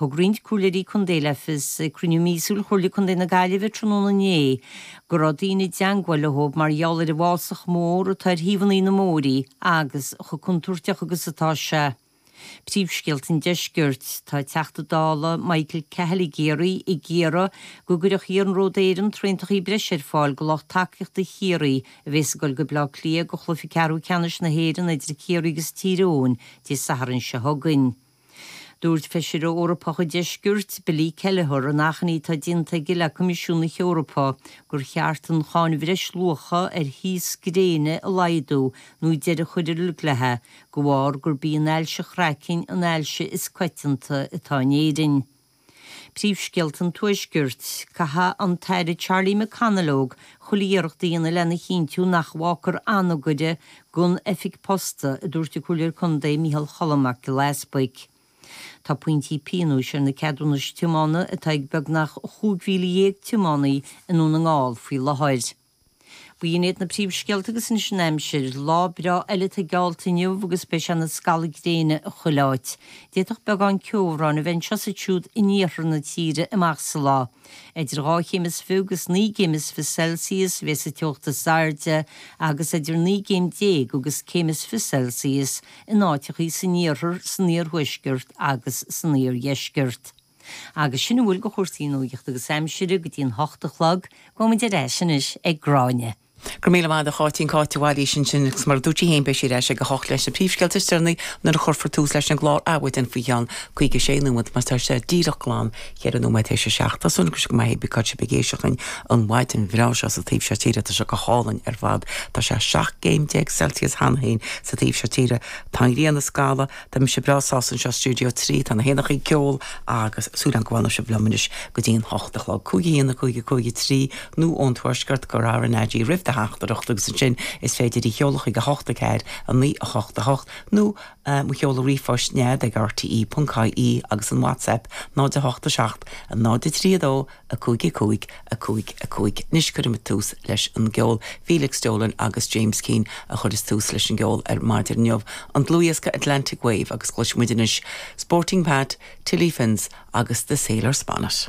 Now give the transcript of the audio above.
Thug roinnt comhairleoirí contae le fios ag cruinniú míosúil Chomhairle Contae na Gaillimhe tráthnóna inné go raibh daoine i dteangmháil leo mar gheall ar an bhfásach mór atá ar thaobhanna na mbóithrí agus chomh contúirteach agus atá sé. Príomhscéalta an Deiscirt. Tá an Teachta Dála Michael Cahill i gCiarraí ag iarraidh go gcuirfeadh Iarnród Éireann traentachaí breise ar fáil go lucht tacaíochta Chiarraí a bhéas ag dul go Baile Átha Cliath go chluichí ceathrú ceannais na hÉireann idir Ciarraí agus Tír Eoghain Dé Sathairn seo chugainn. Dúirt Feisire Eorpach an Deiscirt, Billy Kelleher, in achainí atá déanta aige le Coimisiún na hEorpa, gur cheart an cháin bhreisluacha ar thaos gréine a laghdú nó deireadh a chur ar fad léi, de bharr gurb í an ailse chraicinn an ailse is coitianta atá in Éirinn. Príomhscéalta an Tuaiscirt, Caithfidh an tAire Charlie McConalogue chuile iarracht a dhéanamh lena chinntiú nach bhfágtar Anagaire gan oifig posta, a dúirt an Comhairleoir Contae Micheál Choilm Mac Giolla Easbuig. Tá pointí pionóis ar na ceadúnais tiomána atá ag beagnach 15,000 tiománaí i nDún na nGall faoi láthair. B'in iad na príomhscéalta agus anois an aimsir. Lá breá eile atá geallta inniu agus beidh sé ina scalladh gréine i chuile áit. D'fhéadfadh beagán ceobhráin a bheith anseo is ansiúd in iarthar na tíre amach sa lá. Idir dhá chéim is fiche agus naoi gcéim is fiche Celsius a bheidh sa teocht is airde agus idir naoi gcéim déag agus céim is fiche Celsius in áiteachaí san iarthar, san iarthuaisceart agus san iardheisceart. Agus sin a bhfuil go chúrsaí nuachta agus aimsire go dtí an hocht a chlog, gabhaimid ar ais anois ag Gráinne. Go raibh míle maith agat a Cháit, sin Cáit Ní Mhailís ansin agus mar a dúirt sí féin beidh sí ar ais ag a hocht leis na príomhscéalta is deireanaí nuair a chuirfear tús leis an gclár Adhmhaidin faoi cheann caoga sé nóiméad mar atá sé díreach glan ceithre nóiméad tar éis a seacht. Tá súil agam go maith sibh pé áit a bhfuil sibh ag éisteacht linn an mhaidin bhreá seo sa taobh seo tíre tá sé go hálainn ar fad tá sé seacht gcéim déag Celsius cheana féin sa taobh seo tíre tá an ghrian ag scalladh Tá mise breá sásta anseo stiúideo trí, tá na héanachaí ag ceol agus súil agam go bhfanfaidh sibh liom anois go dtí an hocht a chlog. Cúig, a haon, a cúig, a cúig, a trí, nó ón tuaisceart cuir RnaG roimh do theachtaireacht agus ansin is féidir í sheoladh chuig a hocht a ceathair, a naoi, a hocht, a hocht, nó mo sheoladh ríomhphoist nead ag rte.ie agus an WhatsApp 0 8 7 0 3 2 5, 5, 5, 5, Anois cuirfimid tús leis an gceol. Felix Dolan agus James Keane a chuireas tús leis an gceol ar maidin inniu, an dlúthdhiosca Atlantic Wave agus cloisfidh muid anois Sporting Pat, Tilly Finn's agus The Sailor's Bonnet.